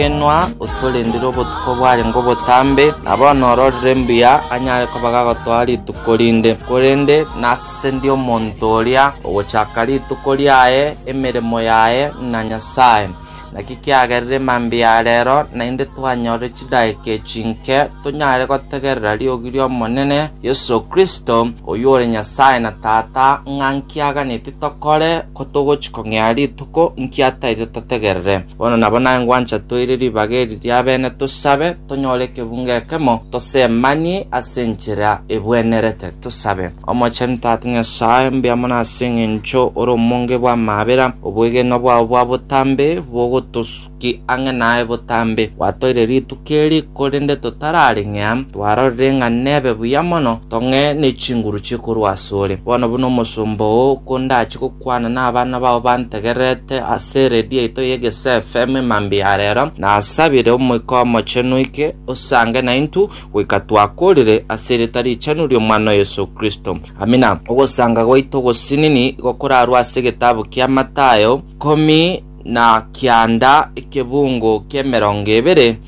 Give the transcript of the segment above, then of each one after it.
Inwe otorendire obotuko bwarenge obotambe, na bono ororire mbuya anyare koba gagotoa rituko rinde. Korende nase ndi omonto oria ogochaka rituko riaye emeremo yaye na Nyasae. Naki kiagerire mambia a reero naende twanyore chidakika echi inke tonyare gotegerera riogi ri'Omonene Yeso Kristo, oyio ore Nyasae na Tata, ng'a nkiaganetie tokore, ko togochia kong'ea rituko, inki ataete totegerere. Bono nabo naye ngwancha toire ribaga eri ri'abene tosabe, tonyore ekebunga ekemo, tosemanie ase enchera ebwenerete. Tosabe. Omochenu Tata Nyasae, mbuya mono ase engencho ore omonge bw'amabera, obwegenwa bwao bwa botambe bogotosuki ang'e naye botambe. Gwatoire rituko eri, korende totarareng'ea, twarorire ng'a nebe buya mono tong'e ne chinguru chie korwa asore. Bono buna omosomba oo kondachie gokwana nabana bao bantegererete ase eredio yaito ye Gesaa FM e mambia ya rero, nasabire Omoika Omochenu oike osange naintwe goika twakorire ase erieta richenu ri'Omwana o Yeso Kristo. Amina. Ogosanga gwaito ogosinini gokorarwe ase egetabu kia Mathayo, ikomi na kianda, ekebungo ki'emerongo ebere,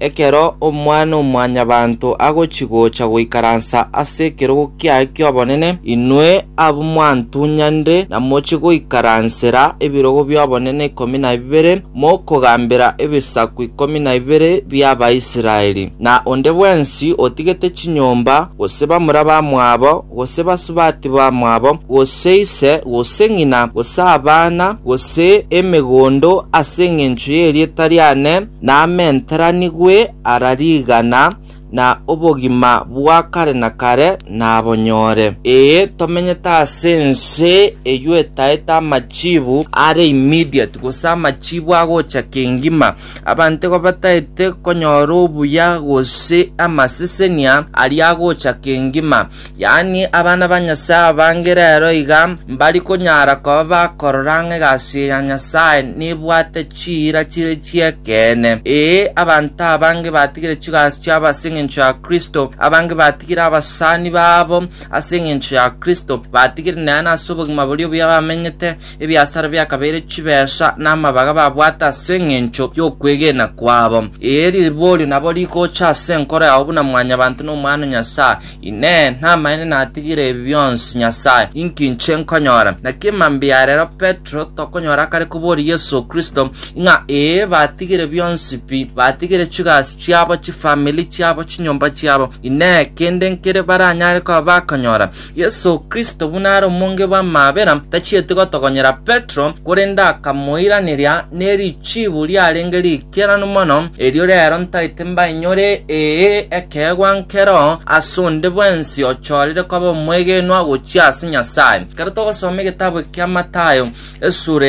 Ekero Omwana-o-mwanyabanto agochi-gocha goikaransa ase ekerogo kiaye ki'obonene, inwe abwo mwantunyanire na mochie goikaransera ebirogo bi'obonene ikomi na bibere, mokogambera ebisaku ikomi na bibere bi'Abaisraeli, na onde bwensi otigete chinyomba, gose bamura bamwabo, gose basubati bamwabo, gose ise, gose ng'ina, gose abana, gose emegondo ase engencho y'erieta riane, namenteranigwe ara rigana, na obogima bwa kare na kare nabonyore. Ee, tomenyete ase ense eyio etaete amachiibu are immediate, gose amachiibu agocha kengima. Abanto igo bataete konyora obuya gose amasesenia aria agocha kengima. Yaani abana ba Nyasae abange rero iga mbari konyara koba bakorora ng'a egasi ya Nyasae nebwate chiira chire chi'ekeene. Ee, abanto abange batigire chigasi chiabo ase engencho ya Kristo, abange batigire abasani babo ase engencho ya Kristo, batigire neene ase obogima boria obuya bamenyete, Ebiasara biakabeire chibeesa namabaga babwate ase engencho yokwegena kwabo. Ee, riborio nabo rigocha ase enkoro yao buna mwanyabanto na Omwana o Nyasae. Inee! Namaene natigire ebi bionsi? Nyasae, inki inche nkonyora? Naki emambia ya rero Petero tokonyora akare koboria Yeso Kristo, ng'a ee, batigire bionsi pi, batigire chigasi chiabo, chifamiri chiabo, chinyomba chiabo. Inee! Kende nkere baranyare koba bakonyora? Yeso Kristo buna are omonge bw'amaabera, tachieti gotogonyera Petero, korende akamoiraneria ne richiibu riarenge riikeranu mono, erio rero ntaete mbainyore, ee, ekeegwa nkero ase onde bwensi ochoorire koba omwegenwa gochia ase Nyasae. Ekero togosoma egetabu eke kia Mathayo, esura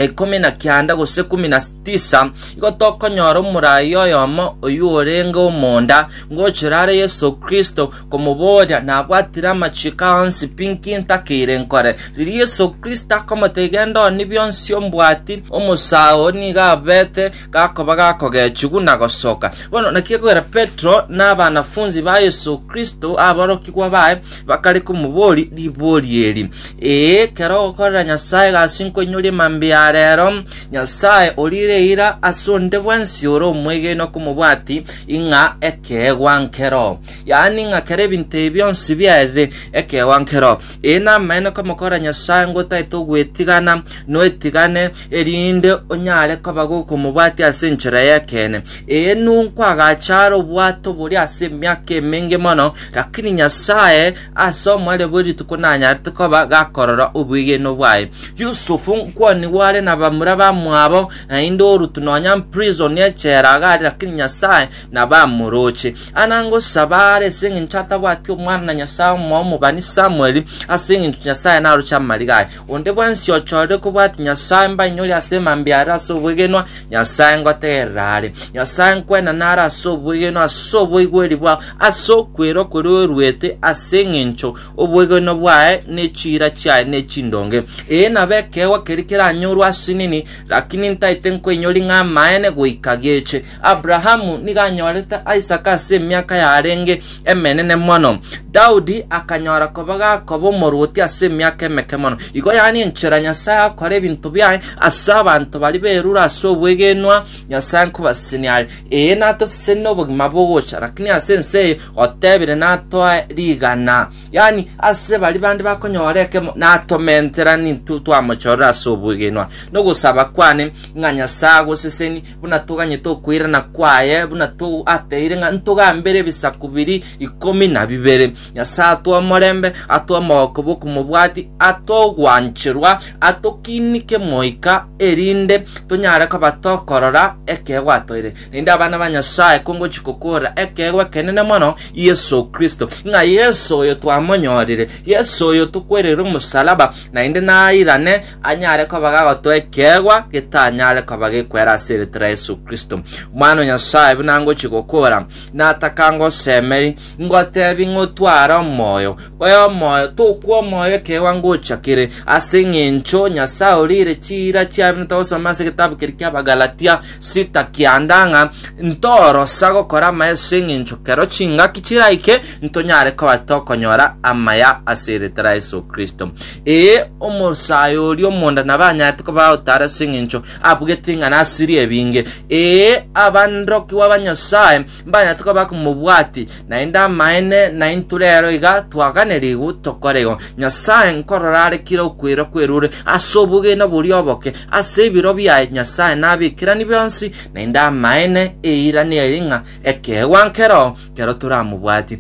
ikomi na kianda gose ikomi na tisa, igo tokonyora omoraia oyomo oyio orenge omonda, ngochera are Yeso Kristo, komoboria nabwatire amachiiko ao onsi pi inki ntakeire nkore. Riria Yeso Kristo akomotebia, Genda ooni bionsi ombwati, omosao oo nigo abete gakoba gakogechigwa na gosoka. Bono naki gekogera Petero na abanafunsi ba Yeso Kristo, aborokigwa baye, bakare komoboria ribori eri, Ee, kera ogokorera Nyasae egasi nkoinyorie mambia ya reero, Nyasae oriire eira ase onde bwensi ore omwegenwa komobwati ing'a ekeegwa nkero. yaani ng'a kera ebinto ebi bionsi biarire ekeegwa nkero. Ee, namaene komokora Nyasae ngotaete ogwetigana, noetigane, erinde onyare koba gokomobwatia ase enchera y'ekeene. Ee, ninkwagacha are obwato boria ase emiaka emenge mono, lakini Nyasae ase omoerio bwe rituko nanyarete koba gakorora obwegeno bwaye. Yusufu nkwanigwa are nabamura bamwabo, naende orutu nonya mprison echera iga are, lakini Nyasae na bamoroche. Anangosaba are ase eng'encho atabwati omwana na Nyasae omoa omobani Samueli, ase eng'encho Nyasae naroche amarigo aye. Onde bwensi ochorire kobwati Nyasae mbainyore ase mambia are ase obwegenwa, Nyasae ngotegerera are. Nyasae nkwenana are ase obwegenwa, ase oboigweri bwao, ase okwera okoria oruete, ase eng'encho obwegenwa bwaye ne chiira chiaye ne chindonge. Ee nabe ekeegwa keria keranyorwe ase nini, lakini ntaete nkoinyori ng'a amaene goika geche. Abrahamu nigo anyorete Isaka ase emiaka yarenge emenene mono. Daudi akanyora koba gakoba omorwoti ase emiaka emeke mono. Igo yaani enchera Nyasae agokora ebinto biaye ase abanto baria berure ase obwegenwa Nyasae nkobasesenia are. Ee, natosesenie obogima bogocha, lakini ase ense eye otebire natoe rigana. Yaani ase baria bande bakonyora ekemo natomenterani intwe twamochorera ase obwegenwa. Nogosaba kwane ng'a Nyasae agosesenie buna toganyete okoirana kwaye, buna ateire ng'a ntogambere ebisaku biri ikomi na bibere. Nyasae atwe omorembe, atwe omogoko bw'okomobwati, atwe ogwancherwa, atokinike moika, erinde tonyare koba tokorora ekeegwa atoire. Naende abana ba Nyasae kongochi kokorora ekeegwa ekenene mono Yeso Kristo, ng'a Yeso oyo twamonyorire, Yeso oyo tokwerire omosalaba, naende nairane anyare koba gagotoa ekeegwa getanyare koba gekwera ase erieta ria Yesu Kristo. Omwana o Nyasae buna ngochia gokora, nataka ngosemeri, ngotebi ng'otware omoyo, oyo omoyo tokwa omoyo ekeegwa ngocha kere, ase eng'encho Nyasae orire chiira chiabi notogosoma ase egetabu keri ki'Abagalatia sita kianda ng'a ntorosa gokora amaya ase eng'encho kero chingaki chiraike ntonyare koba tokonyora amaya ase erieta ria Yesu Kristo. Ee, omosae oria omonda nabanyarete koba otaare ase engencho abugete ng'a nasirie ebinge. Ee, abaanrokigwa ba Nyasae mbanyarete koba bakomobwati, naende amaene naintwe rero iga twaganerigwe tokore igo. Nyasae nkorora are kera okwera kwerure ase obogene boria oboke ase ebiro biaye Nyasae nabekerani bionsi, naende amaene eira neri ng'a ekeegwa nkero kero toramobwati.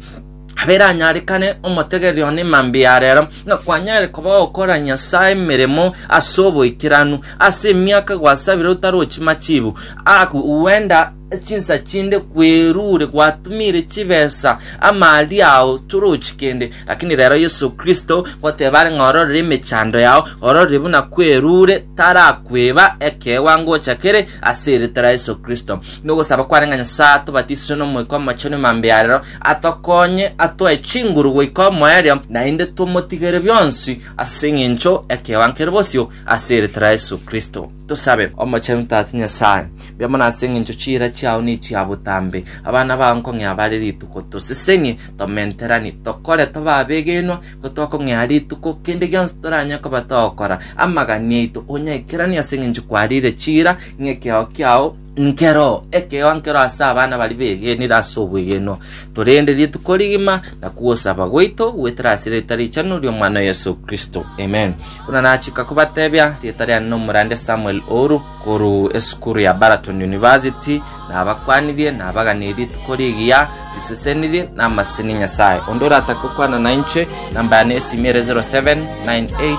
aberanyarekane omotegereri one mambia ya rero, ng'a kwanyare koba gokora Nyasae emeremo ase oboikeranu, ase emiaka gwasabire otarochi machibu, aku gwenda chinsa chinde kwerure gwatumire chibesa amali ao torochi kende, lakini rero Yesu Kristo goteba are ng'a ororere emechando yao, ororere buna kwerure tarakweba ekeegwa ngocha kere ase eritera Yesu Kristo. Nogosaba kware ng'a Nyasae atobatise nomoika omochenu mambia ya rero atokonye atoe chinguru goika omoerio, naende tomotigere bionsi ase engencho y'ekewango keria bosio, ase eritera ya Yeso Kristo. Tosabe. Omochenu Tata Nyasae, mbia mono ase engencho chiira chiao nechia botambe, abana bao nkong'ea bare rituko tosesenie, tomenteranie, tokore tobe abegenwa, ko twakong'ea rituko, kende gionsi toranye koba togokora, amagani aito onyaikeranie ase engencho kwariire chiira, ng'ekeao kiao, Nkero ekegwa nkero ase abana baria begenire ase obwegenwa, torende rituko rigima na kogosaba gwaito goetera ase erieta richenu ri'Omwana o Yeso Kristo. Amen. Buna nachika kobatebia, rieta riane nomorande Samuel Ouru, koruu esukuru ya Baraton University, nabakwanirie, nabaganirie rituko rigiya, risesenirie, na amaseni Nyasae. Onde oratake gokwana nainche, namba yane ya esimi ere 0798